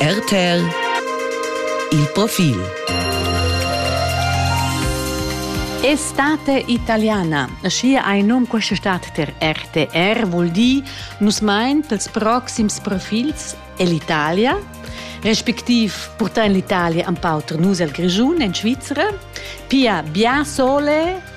RTL Il profil Estate italiana. Schi hai nom questa stat ter RTR vuol dir nus mein pels proxims profilsell'Italia, respectiv portar in l'Italia un po nus al Grischun in Svizzera, pia bia sole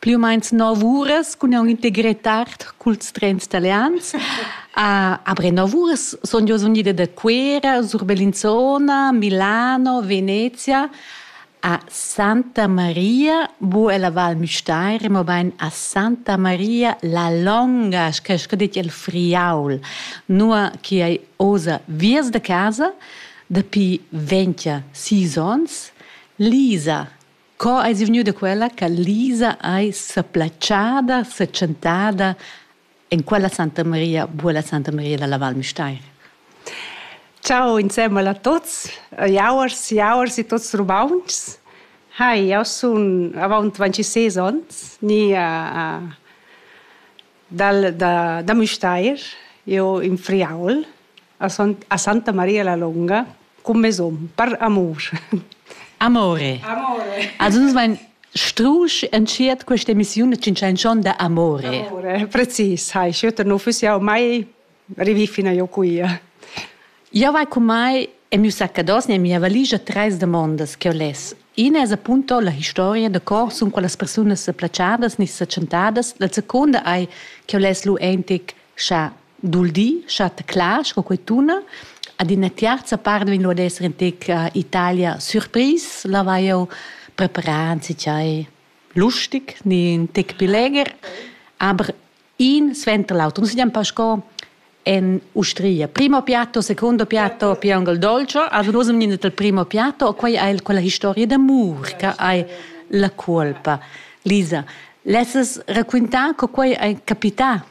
Pli u meins nov uras cun aunc integretar culs trens italians. Uh, aber nov uras son jeu unida da Cuera, sur Bellinzona, Milano, Venezia a Santa Maria, bu ella Val Müstair, mobein a Santa Maria la longa, che che dit il Friaul, nur che ei osa viers da casa dapi 20 sis ons, Lisa Co eis vegniu da quella che Lisa ei seplatschada, setschentada en quella Santa Maria, buala Santa Maria dalla Val Müstair? Ciao insemmel a tots, jauers, jauers e tots rumauntschs. Hai, jau sun avant 26 onns, ni uh, uh, dal, da, da Müstair, io in Friaul. a Santa Maria la Longa cun mes um per amur. Amore. Amore. Also uns mein strusch entschiet questa emissione c'è canzone da amore. Amore, precis, hai schütter no füss jau mai rivi fina io qui. Io vai con mai e mio saccados ne mia valigia tres demandas che ho les. Ina es appunto la historia de cor sun quelle persone se placiadas ni se chantadas, la seconda ai che ho les lu entic scha Dul di, schatta clar, sco quei tuna. Ad ina tiarza part vegn ad esser in tec Italia surpris, la vai jau preparar anzi tgei lustig, ni in tec più leger. Aber in sventa l'auto. Noi siamo Pasco en Ustria. Primo piatto, secondo piatto, piangol dolce. Also noi siamo nel primo piatto, o quei è quella historia d'amor che hai la colpa. Lisa, lesses raccontare che quei è capitato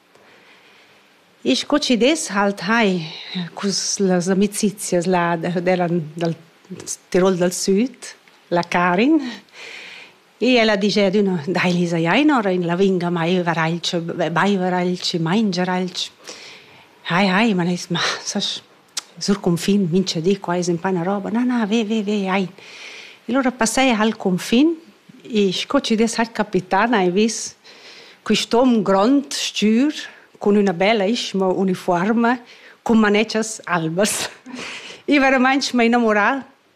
E sco chi dess halt hai cus las amicizias là della dal Tirol dal Süd, la Karin. E ella digia adüna: Dai Lisa, ja inora in lavinga mai varalch, baivaralch, mangiaralch. Hai, hai, ma ais, ma sas sur cunfin, mincha di, qua es ün na roba, na, na, ve, ve, ve, ai. E lura passaie ha'l cunfin e sco chi dess ha'l capità n'hai vis quist'om grond, stür, cun üna bella ischma unifuorma, cun manetschas albas. I veramaing m'ha innamurà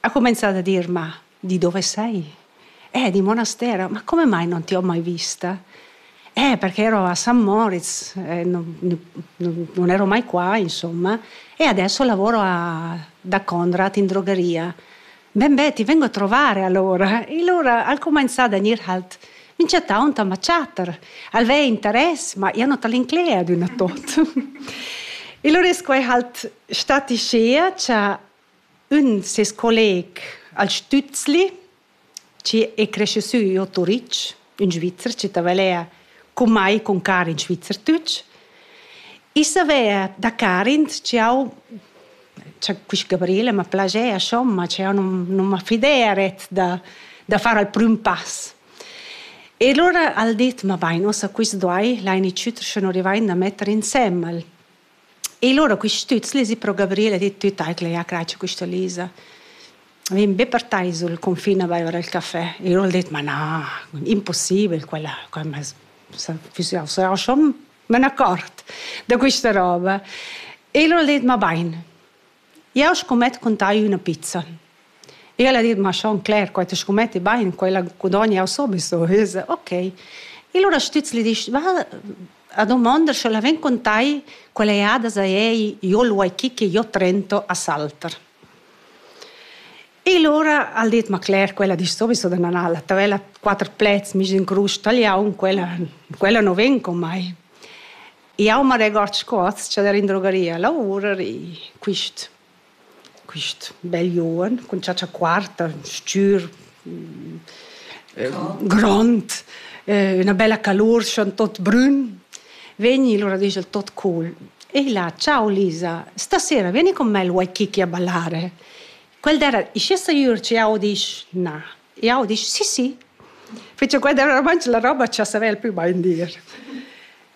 Ha cumenzà da dir: «Ma di dove sei?» «Eh, di monastero, ma come mai non ti ho mai vista?» «Eh, perché ero a San Moritz, eh, non, non, non ero mai qua, insomma, e adesso lavoro a, da Conrad in drogheria. Ben beh, ti vengo a trovare allora». E allora ha cominciato a venire halt mi chattaunt ama chatter. Alvei interess, ma ia non tal'inclea adüna tot. e lur es quai halt stati schea cha ün ses colleg al Stützli, che è cresciuto sü a Turitg, un Svizzer, che tavalea con mai con Karin Schweizerdeutsch. E saver da Karin, che ho c'è questa Gabriele mi piaceva schon, ma che non, non mi fideret da, da fare il primo passo. E allora ha detto, ma vai, nossa, questo dai, l'hai iniziato, se non rivain da mettere insemmel. E lura quist stüz lezi pro Gabriele e dit tüt eicla, ja cratscha quista Lisa. Vegn be per tai sul confin a baiver il café. E lura ho dit, ma na, impossibel quella, quella s'ha s'ha schon me n'accort da quista roba. E lura ho dit, ma bain. Jeu scumet cun tai üna pizza. Ella ha dit: Ma schon Claire, quei te scumetti bein, quella gudogna jau sowieso. E io so, ok. E allora stüz gli disch, va a domandar, sche la ven cun tai quella jada za ei, io lu hai chi che io trento a Salter. E allora ha dit, ma Claire, quella disch sowieso da nanala, t'aveva quatter plets mis in crus tagliaun, quella, quella no ven con mai. Jau ma regord sco tscheder in drogaria, lavurar e quist quist bel giuven cun chatscha quarta, stgür, grond, üna bella calur, schon tot brün, vegni lura disch el tot cool. E illa «Ciao Lisa, stasera vieni con me al Waikiki a ballare?» Quel d'era «Ischi sicür che jau disch na?» Jau disch «Sì, sì». Fece quel d'era ormai la roba cha savev el pü bain dir.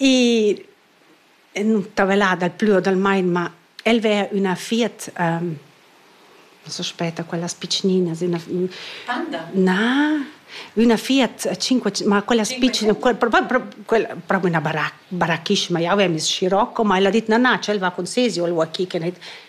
I nun tavelà dal plü o dal main, ma el vea üna fiat, non s'aspetta quellas pitschninas, üna Panda? Na, üna fiat cinque ma quellas pitschn- propi üna barac- barachisma, ja avemis Scirocco, ma el ha dit: "Na, na, tschel va cun sesi o el vo a chì", ch'el gnit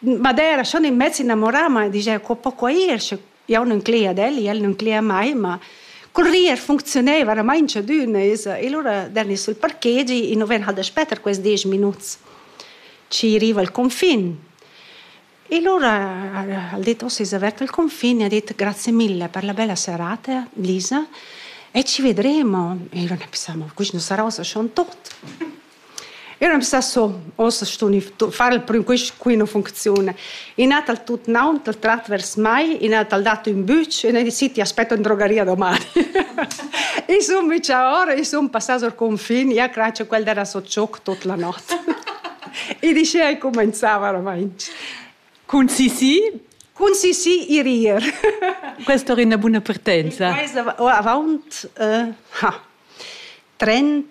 Ma dai era schon in mezz innamorà, ma digia co po quai ir, sche jau nun cleia ad el, el nun cleia a mai, ma cul rir funcziuneva oramaing tschadüna esa. E lura dani sul parkegi, i nu ven hal daspè tar quels desch minuts chi riva al confin. E lura al dit: «Uss es avert il confin» e ha dit: «Grazie mille per la bella serata, Lisa, e ci vedremo». E lura pensamo: «Quist nu sarà ussa schon tot». Eu am sa so, ossa stun far il prüm quist quina funcziun. I n'ha dal tut naun dal trat vers mai, i n'ha dal dat ün bütsch e ne di ti aspetto in drogaria doman. I sun micha ora, i sun passà sur confin, ja crace quel d'era so tschoc tot la not. I dice ai comenzava oramaing. Cun Sisi? Cun Sisi i rir. Questa è una buona partenza. Questa, oh, avaunt, uh, ha, 30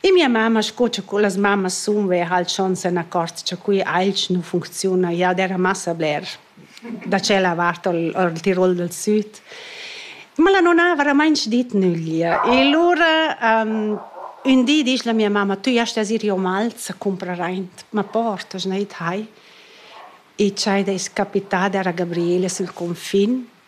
E mia mamma, sco cha las mammas sun, veva halt schon se n'accort cha quei ailch nu funcziuna. Ja d'eira massa bler da tschella vart al al Tirol dal Süd. Ma la nona ha veramainch dit nüglia. E lura ün di disch la mia mamma, tü jast as ir io Malz a cumprar aint, ma port, hast neir id hai? E tschai d'ais capitada era Gabriela sül cunfin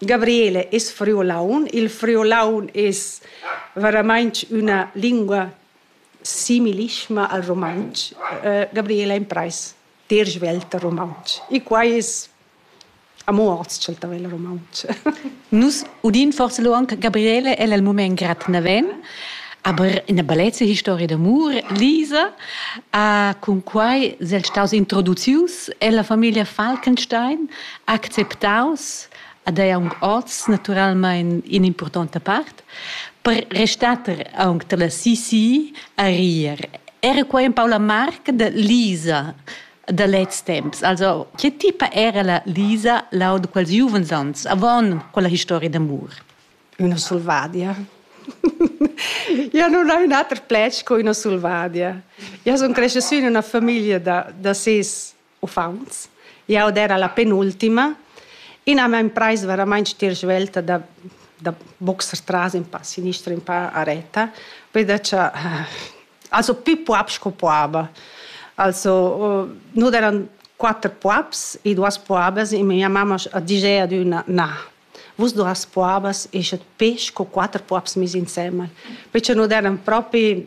Gabriele es friulaun. Il friulaun es veramainch üna lingua similischma al rumantsch. Gabriele imprais dir svelt rumantsch. E quai es amo hoz ch'el ta vegl rumantsch. Nus udin forsa lo anche Gabriele, el al mumaint grat naven, aber ina bellezza historia d'amur, Lisa, uh, cun quai s'el staus introducius ella famiglia Falkenstein acceptaus ad ei aunc oz naturalmein in'impurtonta part per restar aunc dalla CCI a rir. Era quei empau la marca da Lisa da lez temps. Also, che tipa era la Lisa lau da quels giuvens ans, avon quella historia d'amur? Una selvadia. Io non ho un ater plec co una selvadia. Io sono cresciuta in una famiglia da, da ses Uffants. Jau era la penultima. Ina m'ha imprais veramain stir svelta da, da boxer tras in pa sinistra, in pa a retta, veda cha also più puops co puaba. Also nus eran quatter puops e duas puabas e mia mamma ha ditg ad üna na, vus duas puabas eschet pesch co quatter puops mis insemmel, perche nus eran propi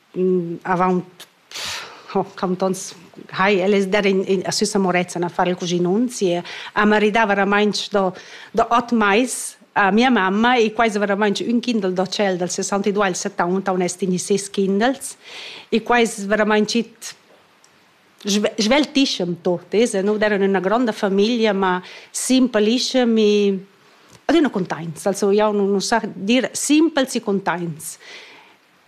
avant cant ons hai el es dat in, in a Süssa Morezzan a fare il cuginunzi e a maridà veramente da, da ot mais a mia mamma e quasi veramente un kindel da cel del 62 al 70 on est in ses kindels e quasi veramente sveltischem tot es e noi eran una gronda famiglia ma simplische mi adina contents also ja non sa dir simpel si contents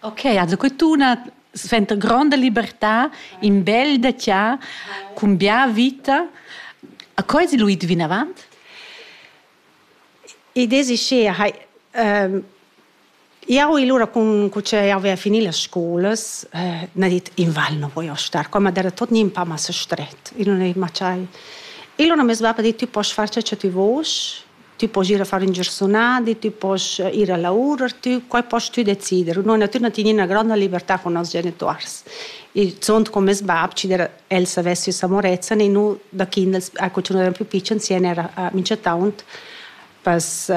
Ok, also quest'una sventa gronda libertà in bel da tia cun bia vita. A coi si Luid vinavant? I desi che ehm Iau ilura cun cu ce iau avea finì las scolas, eh, n'ha dit in val non voglio star, come era tot nin pa massa stret, io non ei macciai. Io non mi va per dir tu posso far ciò che tu vuoi, Tü poss ir a far ün giarsunadi, tü poss ir a lavurer, tü, quai poss tü decider. Noi natürna tin üna gronda libertà con noss genituors. Il zuond con meis bab, ci der el s'avess ü s'amorezza, e nu da kind a cu ün era plü picen sien era a Mincetaunt pas,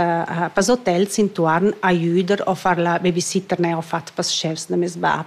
pas hotels intuorn a jüder o far la babysitter ne ho fat pas chefs da meis bab.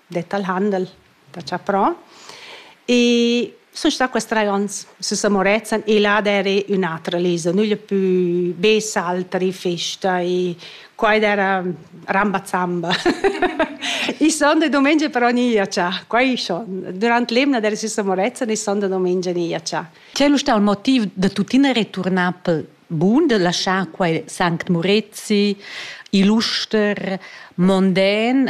det al Handel da chaprà. E sun stà quest trais ons sü San Murezzan e là d'eri ün'atra lisa, nügl pü be saltari, festa e qua ed era ramba zamba. I sonda e dumengia però ni ia cha, qua i schon. Durant l'emna d'eri sü San Murezzan e sonda e dumengia ni ia cha. Quel è stato il motiv da tuttina returnar pel bun, da laschar quai Sanct Murezi, Illuster, Mondän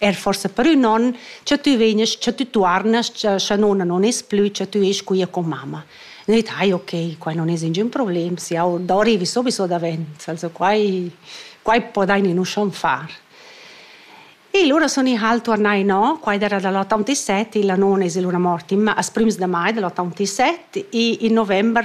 er forse per ün on, che tü vegnes, che tü tuarnas, che nonna non es plü, che tü esch quia con mamma. E io ai ok, qua non es ningün problem, se io do arrivi subito davent, also quai, quai podain in uscion far. E lura sono i hal tornai no, quai era dall'87, la non es lura morti, ma as prims de mai dell'87 e in november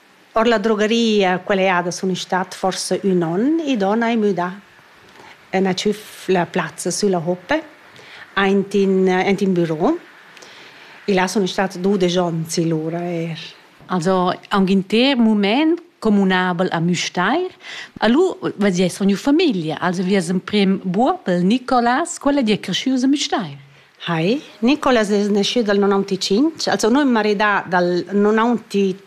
Ord la drogaria quella jada sun i stat forsa ün on, i don hai müdà. Üna tschüfla plazza sülla hoppe aint in aint in büro. E là sun stats dudesch ons lura eir. Also aunc in ter mumaint comunabel a Müstair. Alura vez di sun gnü famiglia, also vi es emprim Buobel, Nicolas, quel è di è creschü a Müstair. Hi, Nicolas es naschü dal nonantetschintg, also nu ün maridà dal nonantetrai,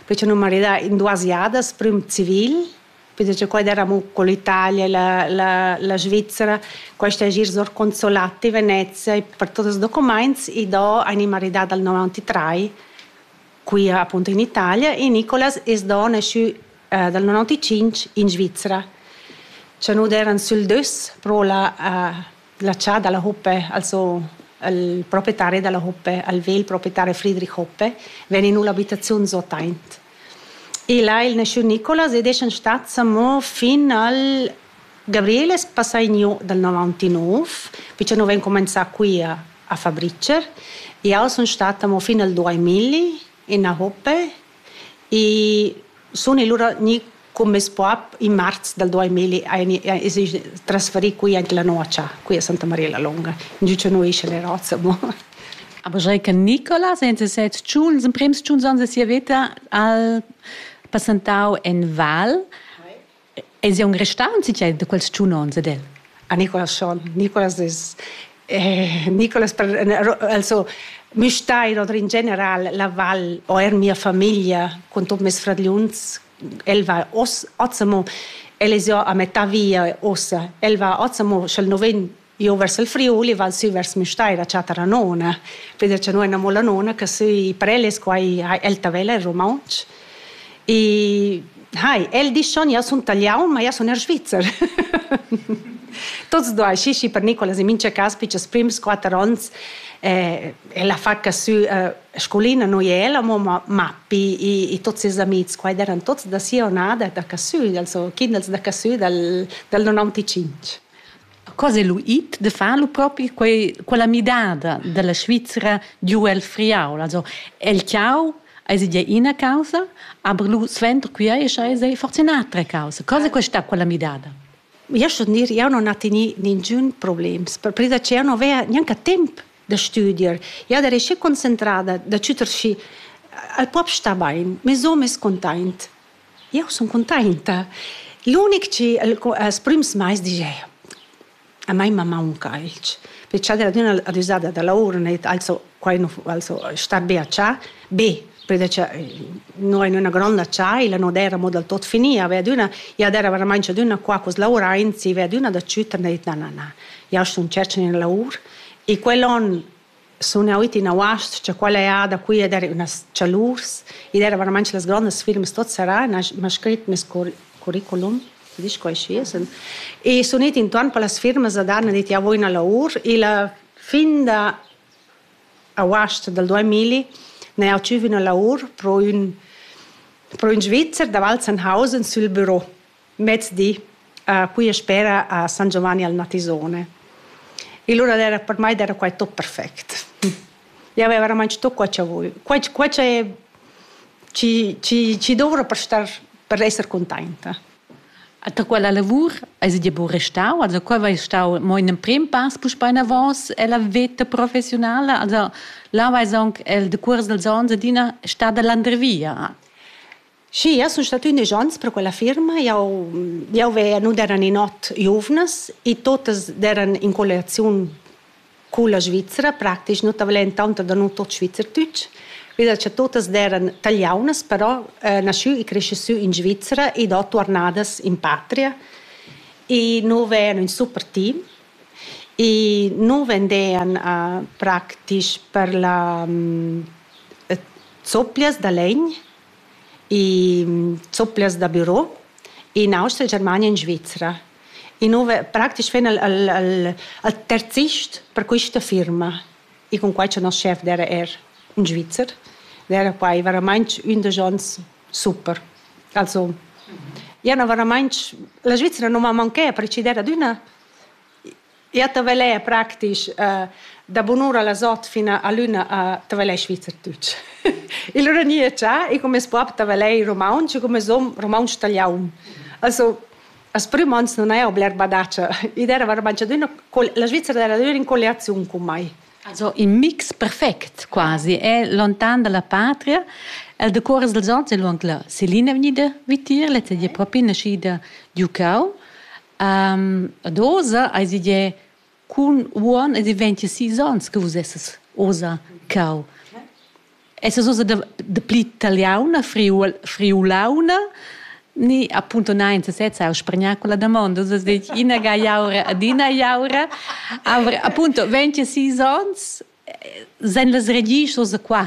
perche nu maridà in duas jadas, prüm civil, perche quai d'eravamo co l'Italia, la, la, la Svizzera, quaista es gnir sor consolati Venezia e per tots els documaints i do ein i maridà dal nonantetrai Qui ha appunto in Italia e Nicolas es do nasciü eh, dal 95 in Svizra. Cha nu d'eran sül dös pro la, eh, la cià dalla Hoppe, also il proprietario della Hoppe, al vegl proprietario Friedrich Hoppe, ven in l'abitaziun sotaint. E là il nasciü Nicolas ed eschan stats amo fin al Gabriel es passà gnü dal novantanov, pichanov aint cumanzà quia a Fabricer. Jau sun stata amo fin al duamilli in Ahope e sun e lura gnü cun meis bap in marz dal duamilli es i trasferì qui aint la Noacha, qui a Santa Maria la Longa, ingio cha no escha le roza amo. Aber Reca Nicola, seventaseit tschun, ils emprems tschun ans da sia veta al passantau en Val. Eis aunc restau in tgei da quels tschun onns ed el? A Nicolas schon. Nicolas es eh, Nicolas per, also mi stai oder in general la val o er mia famiglia con tot mes fradgliuns el va os Azamo el es ja a metà via ossa el va Azamo sch'el no ven Io vers il Friuli val sü vers Müstair a chattar a nona, perché cha no amo la nona che sü Preles, qua el Tavella in rumauntsch. E hai, el disch schon, io sun talian, ma io sun er svizzer. Tots due, sì, sì, per Nicolas in mincha cas, pichas prims quatter ons, eh, la fa che sü eh, scolina noi e ella, ma Mappi e tutti i amici qua erano tutti da sia onada da Cassù, also Kindels da Cassù dal, dal 95. Cosa è lu it de far lu propi quei, quella midada dalla Svizzera giu el friau? Also el ciau eis ide ina causa, aber lu suenter qui eis eis fortunata causa. Cosa è questa quella midada? Io sto dir, io non ho teni ningun problems, perpresa che io non avea neanche temp da studier, io ero schi concentrada da chuter schi al pop sta bain, mes hom es containt. Jeu sun cuntenta. L'unic chi el els prüms mais digia a mai ma maunca alch. Perché cha dad üna adüsada da lavur n'ha dit also quai nu also sta be a chà. Be, perché cha no in üna gronda chaila no d'eira mo dal tot finia, ve ad üna ja d'eira veramaing ad üna qua cu's lavuraint, si ve ad üna da tschütta n'ha dit na na na. Jau sun tschercha üna lavur e quel on sun eu iti in auast cha quella eada qui ed era ünas chalurs. Id era veramaing las grondas firmas tuot serrà, m'ha scrit meis curriculum, ti disch quai schi, sun. E sun it intuorn per las firmas ad han dit javo üna laur. Illa fin da auast dal duamilli n'ha eu tschüf üna laur pro ün pro ün Svizzer da Walzenhausen sül büro. Mezdi, puia spera a San Giovanni al Natisone. E lura era, per mai era quai tot perfect. Io avevo veramente tot quai che voglio. Quai, quai che ci, ci, ci dovrò per star, per essere contenta. Da quella lavur hai dir buca restau? Also qua vai stau mo in emprim pass puspei avos ella veta professionala. Also là vai sonc el de cuors dels ons adina stada l'andrevia. Sì, jau sun stata ündesch ons per quella firma. Jau, jau veia, nu d'eran in ot giuvnas e totas d'eran in colliaziun culla Svizra, praktisch nu t'avelen tanta da nu tot Schweizerdeutsch. Veda cha totas d'eran taliaunas, però naschü e cresce sü in Svizra ed ho tuornadas in patria. E nu vean ün super team e nu vendean praktisch per la zoplias da legn e zopplias da büro in Austria, Germania e in Svizra. E nu praktisch ven al, al, al, al terzist per quista firma. E con quai cha nos chef era er in Svizzer, era quai veramaints ün da ons super. Also, ja, no, veramaints, la Svizzera non m'ha manchè, per cidere ad üna Ia tavelea practisch da bunura las ot fin a luna a tavelei svizzer tutg. Il ora ni è già e come sbab tavelei romaunsch e come som romaunsch taliaun. Also, as prüm ans non haja bler badatscha. Id era var mancadüna, la Svizzera era adüna in colliaziun cun mai. Also in mix perfect quasi, è lontan dalla patria. El decuors dels ons è luond la Selina vegnida vitier, lezza di è propi naschida giucau. Um, ad osa eis idee cun uon ed i venti sis ons che vus esses osa cau. Esses osa de, de pli taliauna, friul, friulauna, ni appunto nein se sezza au spregnar con la domanda, osa det ina ga iaura ad ina iaura, aber appunto venti sis ons Sen las regischos da qua.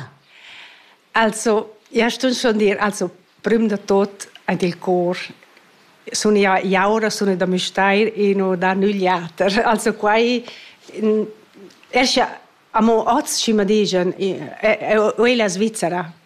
Also, ja stun schon dir, also prüm da tot ant il cor sun ja jaura sun da Müstair e no da nügl jater. Also quai escha amo oz schi ma digen, e, e, e, e la Svizzera.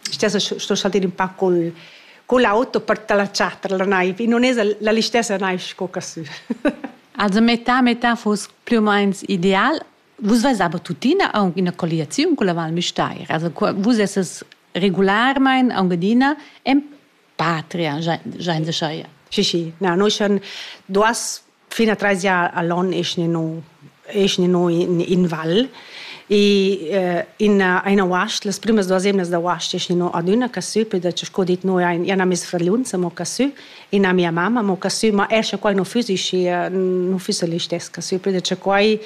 stessa sto saltare un po' col con l'auto per te la chatter la naiv non es la l'istessa naiv sco che su Also metà metà fosse più o meno ideal. Vus vais aber tuttina aunc ina colliaziun con la Val Müstair. Also vus esses regularmein aunc adina en patria jain de scheia si si na noi schon duas fina treis jaar alon is ni no is ni no in in val e in eine wacht las primas duas emnas da wacht is ni no adüna casü per da co dit noi ein ja na mis fraliunza mo casü e na mia mamma mo casü ma esce quai no füsi si no füsi listes casü per da quai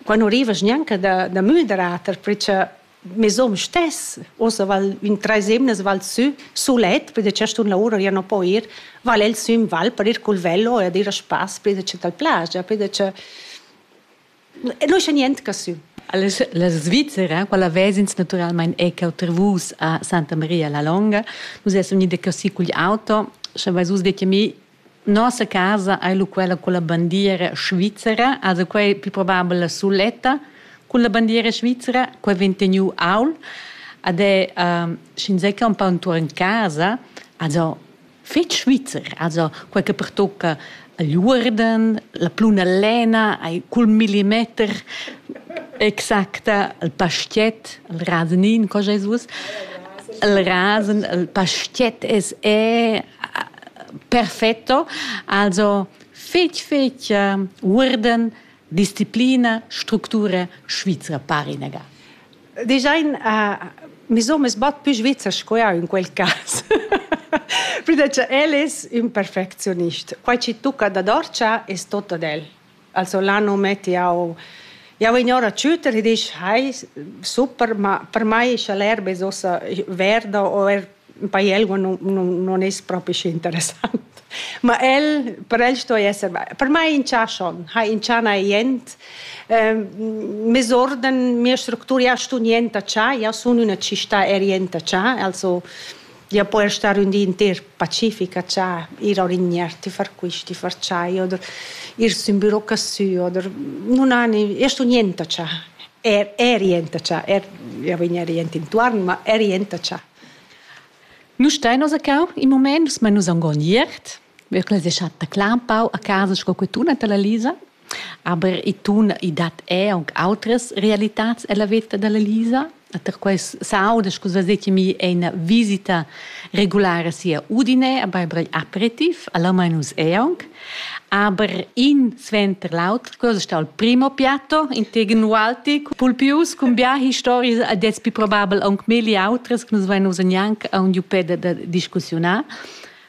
quai no rivas gnanca da da müderater perché mes hom stess, ossa val in treis emnas val sü sulet, perché cea stun la ura, ja non po ir, val el sü in val per ir cul velo e ad ir a spass, perché dal plaja, perché non c'è niente ca sü. La Svizzera, quella vesins naturalmein è che oltre vus a Santa Maria la Longa, nus essem ida così cugl auto, sche vais us de che mi Nossa casa ei lu quella culla bandiera svizzera, also quei pli probabel la suletta culla bandiera svizzera, quei vegn teniu aul ed è ehm, sch'inzatgei empau entuorn casa, also fetg svizzer, also quei che pertucca igl uorden, la pluna lena ei cul millimeter exacta, il pastiet, il rasenin, co sch'ei suos, il rasen, il pastiet es è Perfetto. Also fetg fetg uh, uorden disciplina structura svizra parinega. Design uh, mi so mes bat più svizza sco ja in quel cas. Prima che el es un perfectionist. Quai ci tucca da dorcia es tot ad el. Also là non metti jau jau vegn ora a tschütter e disch hai super ma per mai scha l'erba es uossa verda o er in paiel non non non es propi schi interessant ma el per el sto esser per mai inchà schon ha inchà na jent mes orden mia structura ja stu niente cha ja sun üna città er jente cha also Ja poi star ün di inter Pacifica cha ir a orignar, ti far quist, ti far tschai oder ir sün büro cassü oder nun hani, io sun jenta cha, er er jenta cha, er io vegn er jent intuorn, ma er jenta cha. Nu stain nos a cau, in mumaint, sma nus am gon iert. Wirklich, das hat der Kleinbau a casa sco que tuna della Lisa. Aber i tuna i dat è aunc outras realitats ella veta della Lisa. Per quais saudas cosa se che mi è una visita regulare sia Udine, aber brei aperitif, alla mainus è aunc. Aber in sventer l'auter cosa sta il primo piatto integen Walti Pulpius con bia histories ad es più probabel aunc meli outras che nus vain usa neanche a un giupè da discussionar.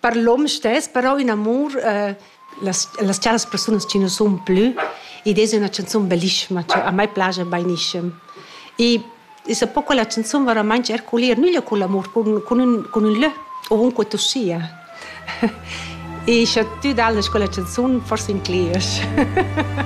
Per l'hom stess però in amur eh las las charas persunas chi nu sun plü. Id es üna chanzun bellissima cha a mai plaja bainischem. I es a po quella chanzun veramaing erculir nüglia cun l'amur, cun cun ün cun ün lö ovunque tu sia. E scha tü dallas quella chanzun, forsa inclegiast.